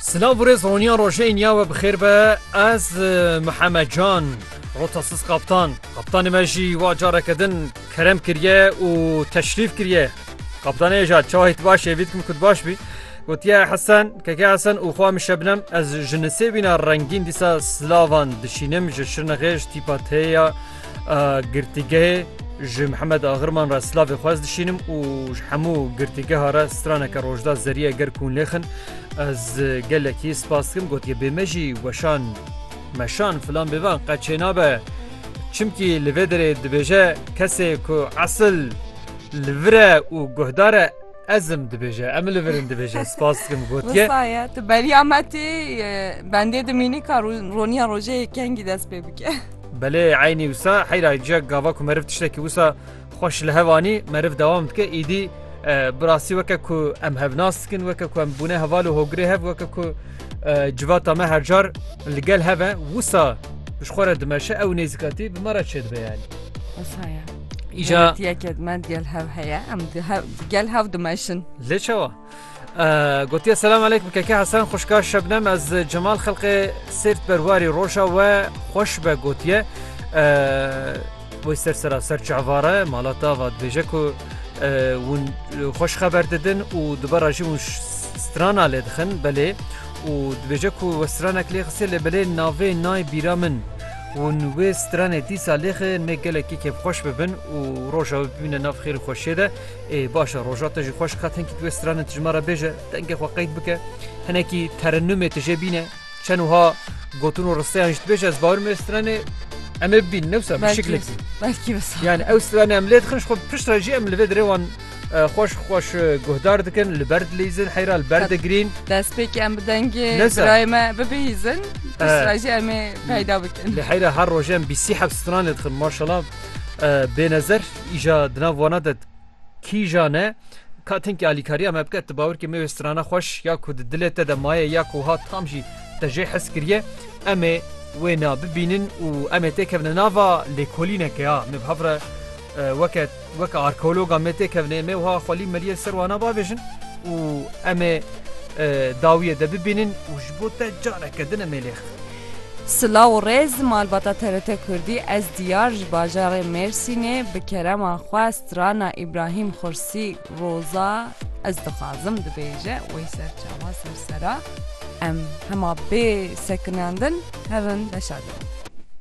Silav û rêz roniya rojeyên ya we bi xêr be ez Mihemed Can Rotasiz Kaptan Kaptanê me jî wa careke din kerem kiriye û teşrîf kiriye Kaptanê ja çayê tu baş evî dikim ku baş bî gotiye Hesen keke Hesen û xwa min şebnem ez ji nisêbîna rengîn dîsa silavan dişînim ji şirnexêj tîpa teya Girtîgehê ji Mihemed Agirman re slavê xwez dişînim û ji hemû girtîgeha re straneke rojda zerîye ger kûn lêxin ez gelekî spas dikim gotiye bê me jî weşan meşan filan bêvan qe çênabe çimkî li vê derê dibêje kesê ku esil li vire û guhdare Ezim dibêje em li virin dibêje spas dikim gotiye. Saye tu beriya me tê bendê dimînî ka roniya rojê yê kengî dest pê bike. Belê eynî wisa heyra ciya gava ku meriv tiştekî wisa xweş li hevanî meriv dewam dike îdî bi rastî weke ku em hevnas dikin weke ku em bûne heval û hogirê hev weke ku civata me her car li gel heve wisa ji xwe re dimeşe ew nêzîkatî bi me re çêdibe yani. Wisa ye. Îja yekê me gel hev heye em gel hev dimeşin. Lê çawa? Gotiye selam aleykum keke Hasan xuşka şebnem ez Cemal xelqê sêrt berwarî roja we xweş be gotiye Wê ser sera ser çavare mala tava dibêje ku hûn xweş xeber didin û dibera jî hûn strana lê dixin belê û dibêje ku we stranek lê xisê lê belê navê nayê bîra min. Hûn wê stranê dîsa lêxê me gelekî kêfxweş bibin û roja wê bibîne nav xêr û xweşiyê de. Ê baş e roja te jî xweş qet hinkî tu wê stranên tijma re bêje, dengê xwe qeyd bike, hinekî terennûmê tu jê bîne, çend wiha gotin û risteyan jî tu bêje ez bawer im wê stranê em ê bibînin ne wisa bi şiklekî. Belkî wisa. Yanî ew stranê em lê dixin ji xwe pişt re jî em li vê derê wan Xweş xweş guhdar dikin li ber dilîzin heyra li ber digrîn. Destpêkê em bi dengê birayê me bibihîzin jî em ê peyda bikin. Li heyra her rojê em bîsî heft stran lê dixin maşala bênezer îja di nav wana de kîjan e ka tinkî alîkariya me bike tu bawirkî me wê strana xweş ya ku di dilê te de maye ya ku wiha tam jî te jê hes kiriye em ê wê na bibînin û em ê têkevin nava lêkolîneke ya me bi hev re weke Weke arkeologa me tê kevne em ê wiha xwelî meriyê li ser wana bavêjin û em ê dawiyê de bibînin û ji bo te careke din em ê lêx bin. Silav û rêz malbata TRT Kurdî ez Diyar ji bajarê Mêrsînê bi kerema xwe strana Îbrahîm Xursi Roza ez dixwazim dibêje wê ser çawa ser sera em hema bê sekinandin hevin beşa din.